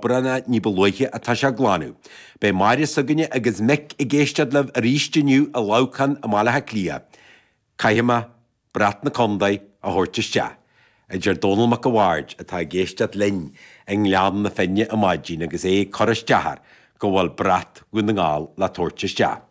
Bronnadh ní ba luaithe atá sé a glanadh. Beidh Máire s'againne agus Mick ag éisteacht libh arís inniu i Leamhcán i mBaile Átha Cliath. Caithfidh mé brat na Condae a thabhairt isteach, a deir Dónall Mac a' Bhaird atá ag éisteacht linn i nGleann na Finne ar maidin agus é ag cur isteach air go bhfuil brat Dhún na nGall le tabhairt isteach.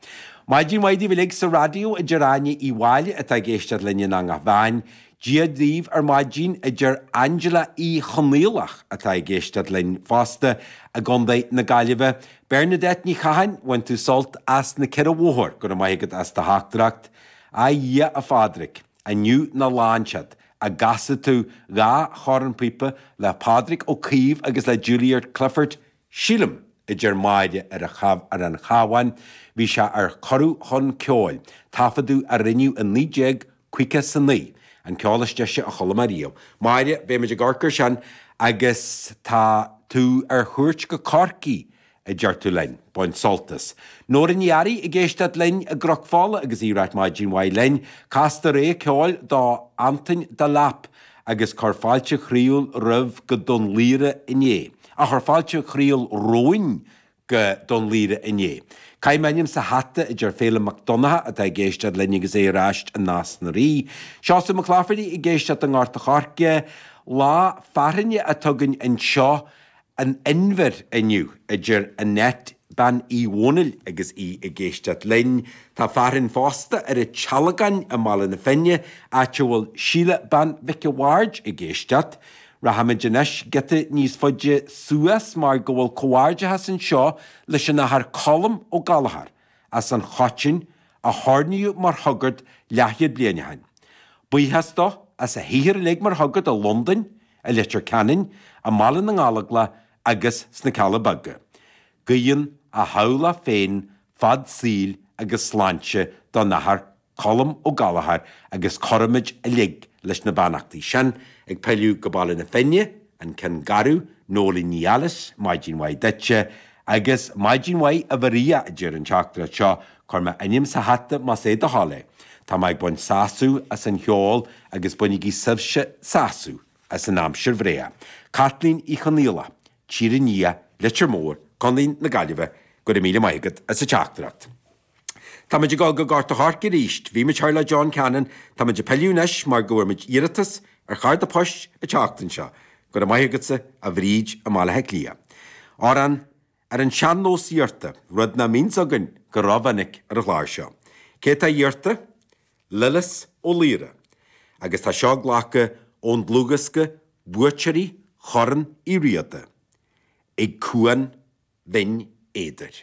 Maidin mhaith daoibh uilig sa raidió, a deir Áine Uí Mháille atá ag éisteacht linn in Eanach Mheáin. Dia daoibh ar maidin, a deir Angela Uí Chonaola, atá ag éisteacht linn fosta i gContae na Gaillimhe. Bernadette Ní Chatháin, bain tú sult as na Ceathrún Móire, go raibh maith agat as do theachtaireacht. A Dhia, a Phádraic, inniu ná lán siad, an gcasfá tú dhá chornphíopa le Pádraig Ó Caoimh agus le Julia Clifford, Sílim, a deir Máire ar an Chabh ar an Chabhán, bhí sé ar Cuireadh Chun Ceoil, taifeadadh a rinneadh i naoi déag caoga 's a naoi, an ceol is deise a chuala mé riamh. Máire, beidh muid ag amharc ar sin agus tá tú ar chuairt go Corcaigh, a deir tú linn, bain sult as. Nóra Ní Fhearraigh ag éisteacht linn i gCnoc Fola agus í ag ráit Maidin mhaith linn, cas dreas ceoil do Antain Delap a chuir fáilte chroíúil romhainn go Dún Laoghaire inné. a chuir fáilte chroíúil romhainn go Dún Laoghaire inné. Caith m'ainm sa hata a deir Féilim Mac Donnacha atá ag éisteacht linn agus é ar ais i Nás na Rí. Seosamh Mac Laifeartaigh ag éisteacht i nGort a' Choirce. Lá fearthainne atá againn anseo in Inbhear inniu, a deir Annette Bean Uí Dhomhnaill agus í ag éisteacht linn. Tá fearthainn fosta ar an tSealgán i mBaile na Finne, áit a bhfuil Síle Bean Mhic a' Bhaird ag éisteacht. Rachaimid anois giota níos faide suas mar go bhfuil comhghairdeachas anseo leis an Athair Colm Ó Gallchóir, as an Choitín, a hoirníodh mar shagart leathchéad bliain ó shin. Buíochas dó as a shaothar uilig mar shagart i Londain, i Leitir Ceanainn, i mBaile na nGallóglach agus sna Cealla Beaga. Guíonn a theaghlach féin fad saoil agus sláinte don Athair Colm Ó Gallchóir agus cuirimid uilig leis na beannachtaí sin, ag pilleadh go Baile na Finne, An Ceann Garbh, Nóilín Ní Ailis, Maidin mhaith duitse, agus maidin mhaith a Mharia, a deir an teachtaireacht seo, cuir m'ainm sa hata más é do thoil é. Tá mé ag baint sásamh as an cheol agus bainigí sibhse sásamh as an aimsir bhréa. Caitlín Uí Chonaola, Tír an Fhia, Leitir Móir, Co na Gaillimhe, go raibh míle maith agat as an teachtaireacht. Tá muid ag dul go Gort a' Choirce arís. Bhí muid thoir le John Cannon. Tá muid ag pilleadh anois mar go bhfuair muid iarratas ar charda poist le teacht anseo. Go raibh maith agatsa, a Bhríd, i mBaile Átha Cliath. Amhrán ar an sean-nós iarrta, rud nach mbíonns againn go rómhinic ar an chlár seo. Cé atá iarrta? Lillis Ó Laoire. Agus tá seo glactha ón dlúthdhiosca Buaiteoirí Chorn Uí Riada ag Cuan Bhinn Éadair.